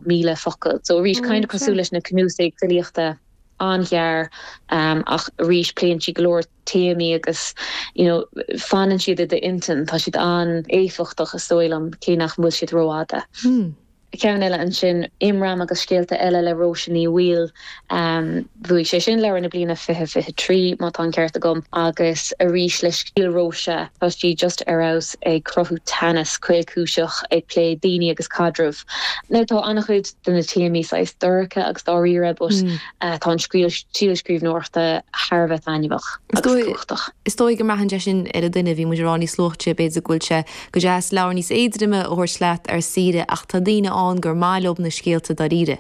1,000 focal. So arís, kind of cosúil leis na cnuasaigh filíochta, an-ghearr, ach arís, pléann sí go leor téamaí agus you know fanann siad i d'intinn, tá siad an-éifeachtach is dóigh liom, cé nach bhfuil siad rófhada. Ceann eile ansin, Imram agus scéalta eile le Róise Ní Bhaoill. Bhuaigh sé sin Leabhar na Bliana Fiche Fiche Trí, má tá an ceart agam, agus arís le stíl Róise, tá sí just ar fheabhas ag cruthú teannas caolchúiseach, ag plé daoine agus caidreamh. Now tá an-chuid de na téamaí saghas dorcha agus dáiríre but tá an stíl scríbhneoireachta thar a bheith taitneamhach agus cumhachtach. Is dóigh go mbraitheann sé sin ar an duine, bhí muid ag rá níos luaithe b'fhéidir go bhfuil sé go deas leabhar níos éadroime a thabhairt leat ar saoire ach tá daoine ann gur maith leob na scéalta dáiríre.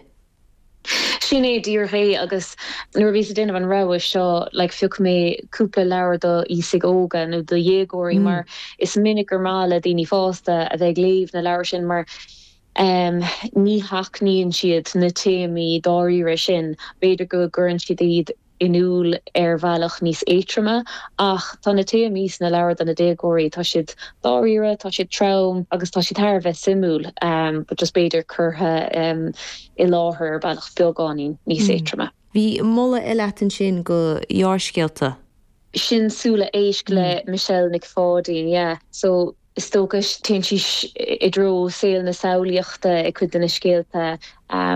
Sin é díreach é agus nuair a bhíos ag déanamh an rogha seo like phioc mé cúpla leabhar do aosaigh óga nó do dhéagóirí mar is minic gur maith le daoine fásta a bheith ag léamh na leabhar sin mar ehm ní sheachnaíonn siad na téamaí dáiríre sin, b'fhéidir go gcuireann siad iad. in iúl ar bhealach níos éatroma ach tá na téamaí sna leabhair do na déagóirí, tá siad dáiríre, tá siad trom agus tá siad thar a bheith suimiúil but just b'fhéidir curtha i láthair ar bhealach beagáinín níos éatroma. Bhí moladh eile a't ansin go ghearrscéalta. Sin Súile Éisc le Michelle Nic Pháidín, yeah. So. Is dócha, téann sí i dtreo saol na samhlaíochta i gcuid de na scéalta,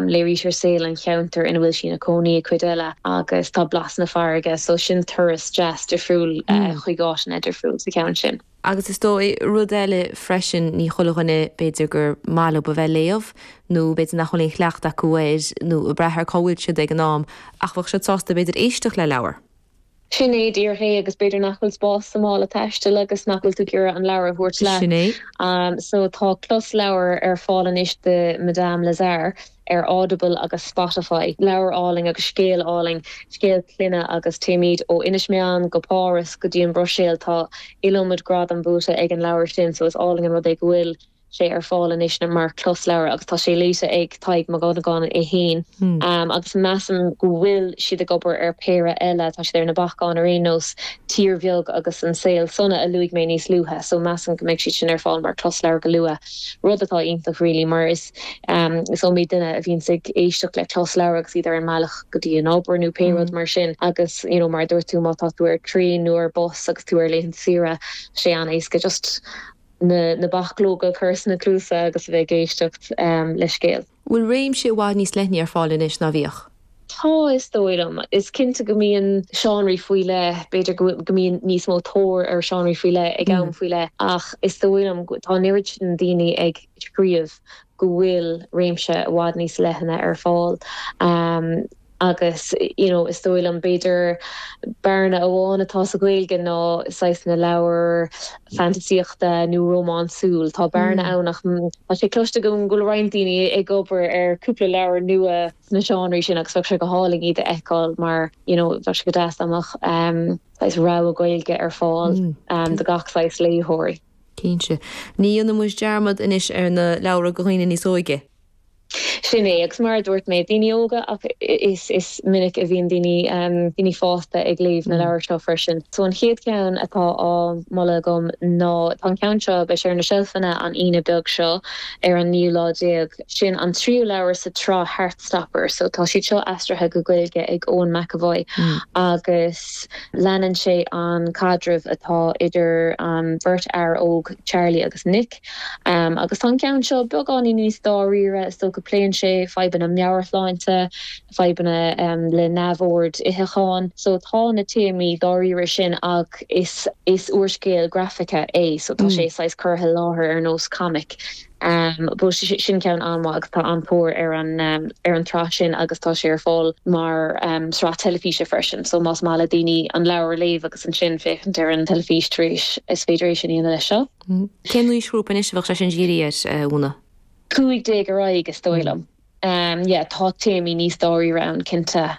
léirítear saol an cheantair ina bhfuil sí ina cónaí i cuid eile agus tá blas na farraige, so sin turas deas difriúil chuig áiteanna difriúil sa cheann sin. Agus is dóigh, rud eile freisin, ní chuile dhuine, b'fhéidir, gur maith leob a bheith ag léamh nó b'fhéidir nach bhfuil aon chleachtadh acu air nó ag brath ar cá bhfuil siad ag an am ach bheadh siad sásta b'fhéidir éisteacht le leabhar. Sin é díreach é agus b'fhéidir nach bhfuil spás sa mála taistil agus nach bhfuil tú ag iarraidh an leabhar a thabhairt leat. Sin é. So tá closleabhar ar fáil anois de Madame Lazare ar Audible agus Spotify. Leabhar álainn agus scéal álainn, scéal clainne agus téimid ó Inis Meáin go Páras go dtí an Bhruiséil. Tá iliomad gradam buaite ag an leabhar sin so is álainn an rud é go bhfuil. sé ar fáil anois mar chlosleabhar agus tá sé léite ag Tadhg Mac Dhonnagáin é féin agus measaim go bhfuil siad ag obair ar péire eile, tá siad ar na bacáin ar aon nós, Tír Bheag agus An Saol Sona a luaigh mé níos luaithe so measaim go mbeidh siad sin ar fáil mar chlosleabhar go luath, rud atá iontach really mar is iomaí duine a bhíonns ag éisteacht le closleabhar agus iad ar an mbealach go dtí an obair nó pé rud mar sin agus you know mar a dúirt tú má tá tú ar traein nó ar bus agus tú ar laethanta saoire sé an-éasca just na bachlóga a chur sna cluasa agus a bheith ag éisteacht le scéal. bhfuil réimse i bhfad níos leithne ar fáil anois ná bhíodh. Tá, is dóigh liom. Is cinnte go mbíonn. seánraí faoi leith, b'fhéidir go mbíonn níos mó tóir ar sheánraí faoi leith ag am faoi leith ach is dóigh liom, tá an oiread sin daoine ag scríobh go bhfuil réimse i bhfad níos leithne ar fáil. Agus, you know, is dóigh liom, b'fhéidir, bearna amháin atá sa Ghaeilge ná saghas na leabhar fantaisíochta nó rómánsúil. Tá bearna ann ach tá sé cloiste agam go bhfuil roinnt daoine ag obair ar cúpla leabhar nua sna seánraí sin agus bheadh sé go hálainn iad a fheiceáil mar, you know, bheadh sé go deas dá mbeadh saghas rogha Gaeilge ar fáil do gach saghas léitheoirí. Cinnte. Ní dhéanfaidh muid dearmad anois ar na leabhra do dhaoine níos óige. Sin é, agus mar a dúirt mé, daoine óga ach is minic a bhíonn daoine, daoine fásta ag léamh na leabhair seo freisin. So an chéad cheann atá á mholadh agam ná, tá an ceann seo, beidh sé ar na seilfeanna an Aoine beag seo ar an naoú lá déag, sin an tríú leabhar sa tsraith Heartstopper. So tá siad seo aistrithe go Gaeilge ag Eoin McEvoy agus leanann sé an caidreamh atá idir an bheirt fhear óg, Charlie agus Nick. Agus tá an ceann seo beagáinín níos dáiríre, is dócha. Pléann sé fadhbanna meabhairshláinte, fadhbanna le neamhoird itheacháin. So tá na téamaí dáiríre sin ach is úrscéal grafaice é so tá sé saghas curtha i láthair ar nós comic. But sin ceann an-mhaith agus tá an-tóir ar an tsraith sin agus tá sé ar fáil mar shraith teilifíse freisin so más maith le daoine an leabhar a léamh agus ansin féachaint ar an teilifís tar éis, is féidir é sin a dhéanamh leis seo. Cén aoisghrúpa anois a bheadh sé sin dírithe air, Úna? Cúig déag ar aghaidh is dóigh liom. Yeah, tá téamaí níos dáiríre ann cinnte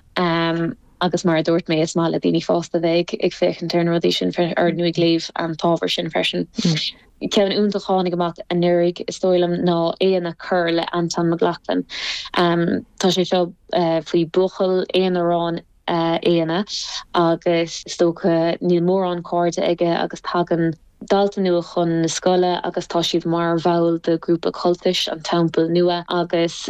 agus mar a dúirt mé is maith le daoine fásta bheith ag féachaint ar na rudaí sin freisin nó ag léamh an t-ábhar sin freisin. Ceann iontach a tháinig amach anuraidh is dóigh liom ná Éanna Corr le Antain Mac Lochlainn. Tá sé seo faoi buachaill aonarán Éanna agus is dócha níl mórán cairde aige agus tagann dalta nua chun na scoile agus tá siad mar bhall de ghrúpa cultais, an Teampall Nua, agus.